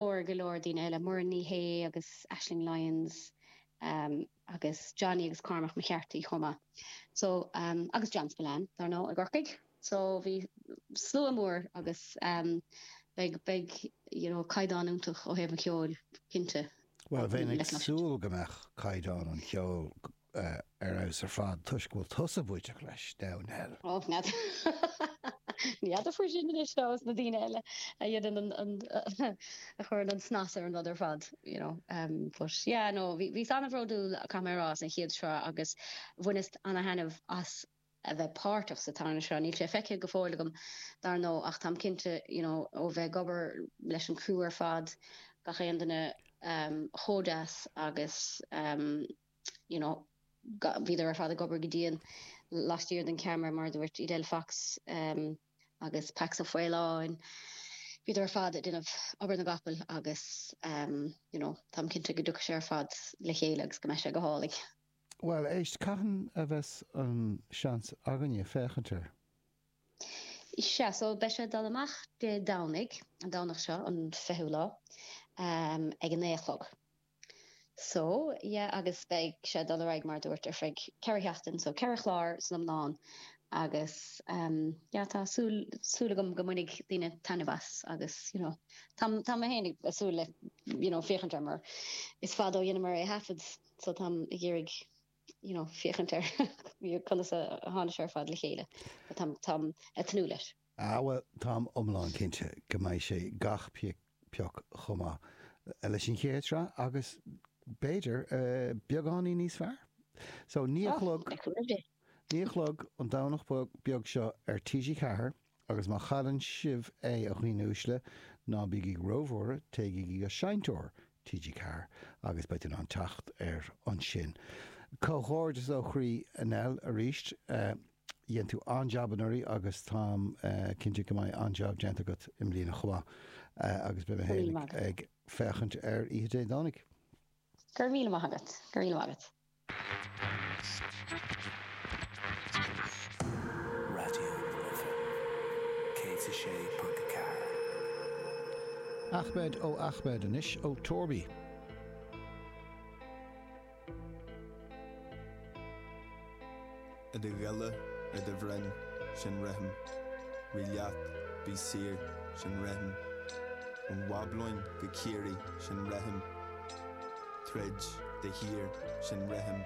Labhair go leor daoine eile, Muireann Ní Shé agus Aisling Lyons agus Johnny agus Cormac McCarthy chomh maith so agus John Spillane dár ndóigh i gCorcaigh so bhí slua mór agus beidh beidh you know caighdeán iontach ó thaobh an cheoil cinnte. Bhuel bheinn ag súil go mbeadh caighdeán an cheoil ar fheabhas ar fad toisc go bhfuil tusa bainteach leis, Nell. Och, n'fheadar faoi sin anois is na daoine eile a dhéanann an, a chuireann an snas ar an rud ar fad, you know. But yeah, no, bhíos an-bhródúil, caithfidh mé a rá, as an chéad sraith agus bhaineas an-thaitneamh as a bheith páirteach sa tarna sraith. Níl sé feicthe go fóill agam, dar ndóigh, ach táim cinnte, you know, ó bheith ag obair leis an gcriú ar fad, gach aon duine chomh deas agus. you know, bhíodar ar fad ag obair go dian laistiar den cheamara, mar a dúirt Edel Fox agus Pax Ó Faoláin, bhíodar ar fad ag déanamh obair na gcapall agus, you know, táim cinnte go dtiocfaidh sé ar fad le chéile agus go mbeidh sé go hálainn. Bhuel, éist, cathain a bheas an seans againne féachaint air? Sea, so beidh sé ag dul amach Dé Domhnaigh, an Domhnach seo, an fichiú lá, ag a naoi a chlog. So, yeah agus beidh sé ag dul ar aghaidh mar a dúirt ar feadh ceithre sheachtain, so ceithre chlár san iomlán agus ehm yeah tá súil, súil agam go mbainfidh daoine taitneamh as agus you know tá, tá mé féin ag súil le you know féachaint air mar is fada ó dheineamar é a thaifead so táim ag iarraidh you know féachaint ar conas a tháinig sé ar fad le chéile but táim, táim ag tnúth leis. Ah bhuel, táim iomlán cinnte go mbeidh sé gach pioc chomh maith leis an chéad sraith agus b'fhéidir beagáinín níos fearr. So, naoi a chlog, naoi a chlog an Domhnach beag seo ar TG4 agus má chailleann sibh é, a dhaoine uaisle, ná bígí róbhuartha, téigigí go seinnteoir TG4 agus beidh tú in ann teacht air ansin. Comhghairdeas ó chroí Nell, arís. Dhein tú an-jab anuraidh agus táim cinnte go mbeidh an-jab déanta agat i mbliana chomh maith agus beidh mé féin ag féachaint air oíche Dé Domhnaigh. Go raibh míle maith agat. Go raibh míle maith agat. Raidió na Life 106.4. Ahmed O Ahmed anois ó Torby. I do ghile, i do bhroinn, sin rithim, rí leat, bí saor, sin rithim, ón Bhablóin go Ciarraí, sin rithim, troid de shíor, sin rithim.